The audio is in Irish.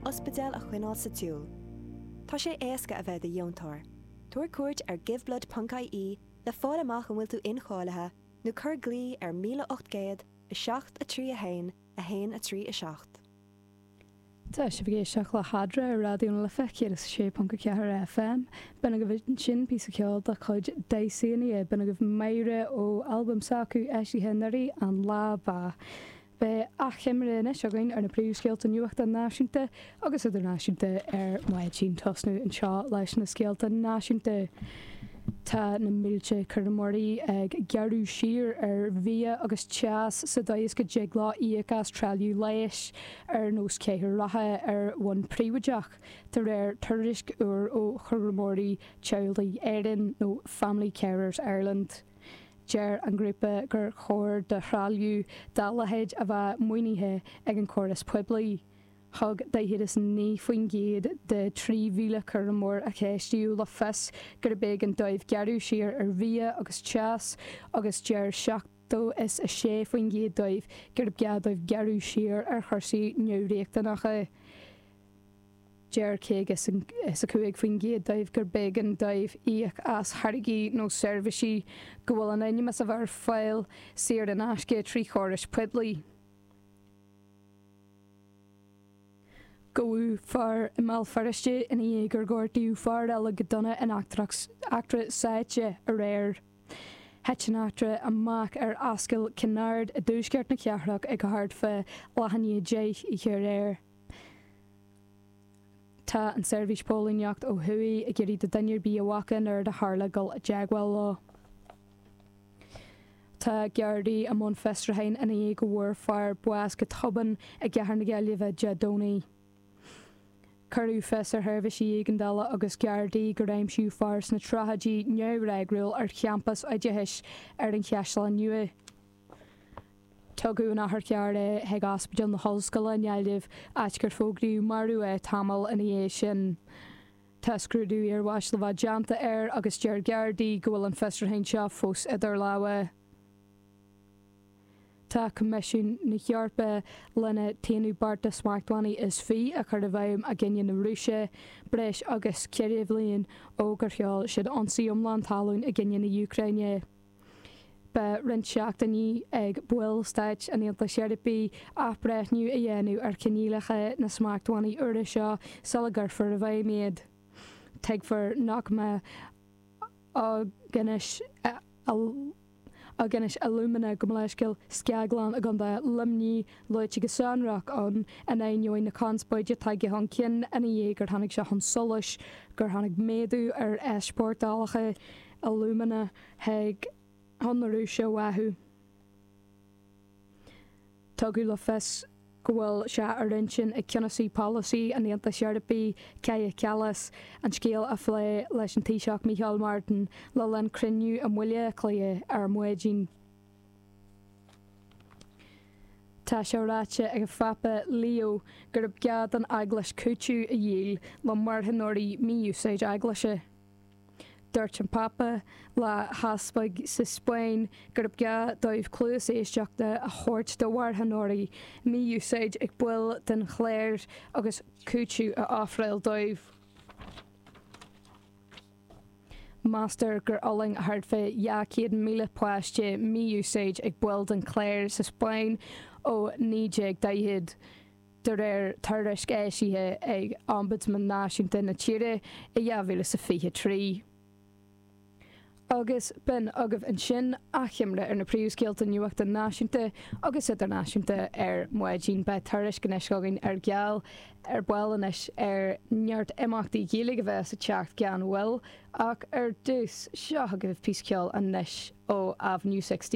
ospidéal a choinneáil sa tsiúl. Tá sé éasca a bheith i do dheontóir. Tabhair cuairt ar giveblood.ie le fáil amach an bhfuil tú incháilithe nó cuir glao ar 1800 731 137. Tá sibh ag éisteacht le hAdhradh ar Raidió na Life 106.4 FM. B'in agaibh ansin píosa ceoil de chuid Dysania. B'in agaibh 'Máire' ó albam s'acu eisithe anuraidh, An Lá Ba. Beidh achoimre anois againn ar na príomhscéalta nuachta náisiúnta agus idirnáisiúnta ar maidin. Tosnú anseo leis na scéalta náisiúnta. Tá na mílte cúramóirí ag gearradh siar ar bhia agus teas sa dóigh is go dtig leo íoc as trealamh leighis ar nós cathaoir rotha ar bhonn príobháideach, de réir tuairisc úr ó Chúramóirí Teaghlaigh Éireann nó Family Carers Ireland. Deir an grúpa gur chóir do threalamh dá leithéid a bheith maoinithe ag an gcóras poiblí. Thug 49% de 3,000 cúramóir a ceistíodh le fios gurb éigean dóibh gearradh siar ar bhia agus teas agus deir 76% dóibh gurb gá dóibh gearradh siar ar chúrsaí neamhriachtanacha. Deir 55% dóibh gurb éigean dóibh íoc as tháirgí nó seirbhísí go bhfuil in ainm is a bheith ar fáil saor in aisce trí chórais poiblí. Gabhadh fear i mBéal Feirste ina dhiaidh gur gortaíodh fear eile go dona in eachtra sáite aréir. Thit an eachtra amach ar Ascaill Kinnaird i dtuaisceart na cathrach ag thart fá leath i ndiaidh a deich oíche aréir. Tá an tSeirbhís Póilíneachta ó Thuaidh ag iarraidh do dhuine ar bith a bhfaca an rud a tharla dul i dteagmháil leo. Tá Gardaí i mbun fiosrúcháin ina dhiaidh go bhfuair fear bás go tobann i gcathair na Gaillimhe Dé Domhnaigh. Cuireadh fios ar sheirbhísí éigeandála agus Gardaí gur aimsíodh fear sna tríochaidí neamhfhreagrúil ar champas oideachais ar an Chaisleán Nua. Tugadh in otharcharr é chuig Ospidéal na hOllscoile i nGaillimh, áit gur fógraíodh marbh é tamall ina dhiaidh sin. Tá scrúdú iarbháis le bheith déanta air agus deir Gardaí go bhfuil an fiosrúchán seo fós idir lámha. Tá Coimisiún na hEorpa leis an t-aonú beart de smachtbhannaí is fiche a chur i bhfeidhm i gcoinne na Rúise, breis agus ceithre bhliain ó gur sheol siad ionsaí iomlán talún i gcoinne na Úcráine. Beidh roinnt seachtainí ag baill Stáit an Aontais Eorpaigh athbhreithniú a dhéanamh ar choinníollacha na smachtbhannaí úra seo sula gcuirfear i bhfeidhm iad. Tuigtear nach mbeidh Aughinish Alumina go bhfuil a scaglann i gContae Luimnigh luaite go sonrach ann in ainneoin na conspóide a tháinig chun cinn ina dhiaidh gur tháinig sé chun solais gur tháinig méadú ar easpórtálacha alumina chuig an Rúis uathu. Tugadh le fios go bhfuil sé ar intinn ag ceannasaí polasaí an Aontais Eorpaigh, Kaja Kallas, an scéal a phlé leis an Taoiseach Micheál Martin le linn cruinniú i mBaile Átha Cliath ar maidin. Tá sé ráite ag an Phápa Leo gurb gá don Eaglais cúiteamh a íoc le marthanóirí mí-úsáid eaglaise. Dúirt an Pápa le heaspaig sa Spáinn gurb gá dóibh cluas éisteachta a thabhairt do mharthanóirí, mí-úsáid ag baill den chléir agus cúiteamh a ofráil dóibh. Meastar gur fhulaing thart fá 200,000 páiste mí-úsáid ag baill den chléir sa Spáinn ó 1940. de réir tuairisc eisithe ag Ombudsman Náisiúnta na tíre i 2023. Agus b'in agaibh ansin achoimre ar na príomhscéalta nuachta náisiúnta agus idirnáisiúnta ar maidin. Beidh tuairisc anois againn ar gheall ar ball anois ar neart imeachtaí Gaeilge a bheas ag teacht gan mhoill, ach ar dtús, seo agaibh píosa ceoil anois ó Avenue 16.